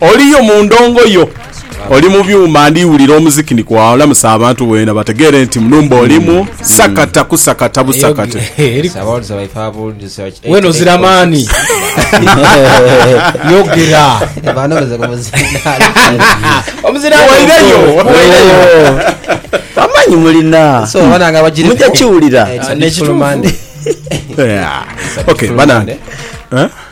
Oliyo mu ndongo yo, oli mu byuma, ndi wulira omuziki ni kwagha olamusa abantu bwena bategeere nti mu numba olimu, sakata kusakata busakate. Wena ozira maani. Yogera. Waireyo. Amanyi mulina. Mujja kiwulira. Yeah. Okay, banange. Eh?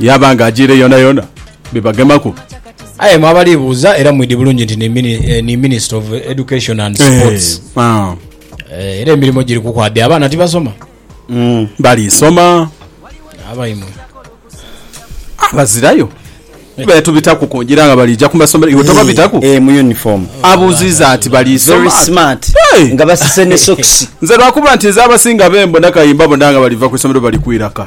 yaaba nga ajiire yoonayoona bibagemaku. Aye mwe abali buuza era mwidi bulungi nti ni eh, Minister of Education and eh, Sports ah. eh, era emirimu giri kukwabya abaana tibasoma mm, bali soma abaimwe abazirayo eh. betubitaku kungira nga balija ku masomero iwe tobabitaku eh, mu uniform abuziza ati bali very smart hey. nga basise ne socks nze lwakuba nti nze abasinga bembo nakayimba bona nga baliva ku isomero bali kwiraka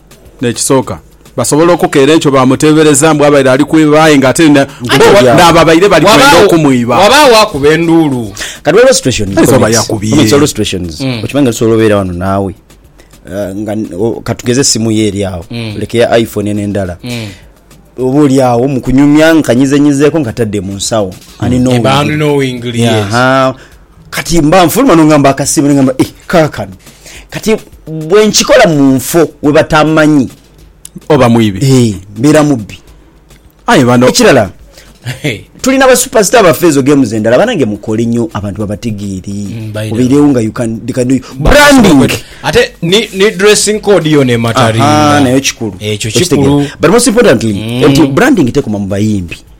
N'ekisooka, basobola okukeera enkyo baamuteebereza mbu abaire ali kwiba aye ng'ate ni n'ababaire bali kwenda okumwiba. Ghabagho akuba enduulu. Kati ghaligho situations, Ayinza oba comments, yakubye. comments, ghaligho situations okimanyi nga tusobola obeera ghano naawe ah, nga o- katugeze esimu yo eri agho leka eya iphone eno endala oba oli agho mu kunyumya nkanyizenyizeeko nkatadde mu nsawo ani Eba ani knowingly, yes. knowingly yes. Aha. Kati mba nfuluma n'ongamba akasiimo, n'ongamba, Ih, kaakano, kati bwe nkikola mu nfo we batamanyi. Oba mwibi. Eeh, mbeera mubbi. Aye bano. Ekirala, tuli na ba superstar baffe ezo games endala, banange mukole nyo abantu babategeere, obeirewo nga you can, they can do you branding. Ate ni, ni dressing code yona emataringa. Ahaa, nayo kikulu. Ekyo kikulu. Okitegeera. But most importantly, nti branding tekoma mu bayimbi.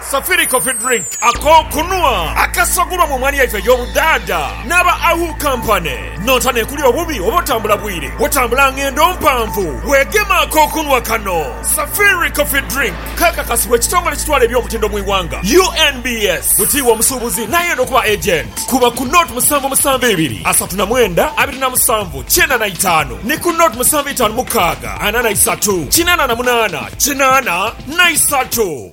Safiri Coffee Drink, ak'okunhwa akasagulwa mu mwaani yaife ey'obudhaadha n'aba Ahu Company. Nonta n'ekuli obubi oba otambula bwire, otambula ng'endo mpanvu, weegema ak'okunhwa kano. Safiri Coffee Drink keekakasibwa ekitongole ekitwala eby'omutindo mu ighanga, UNBS. Butiibwa omusuubuzi n'ayenda okuba Agent, kuba ku Nought musanvu musanvu ibiri, asatu na mwenda, abiri na musanvu, kyenda na itaanu ni ku Nought musanvu itaanu mukaaga, ana na isatu, kinaana na munaana, kinaana na isatu.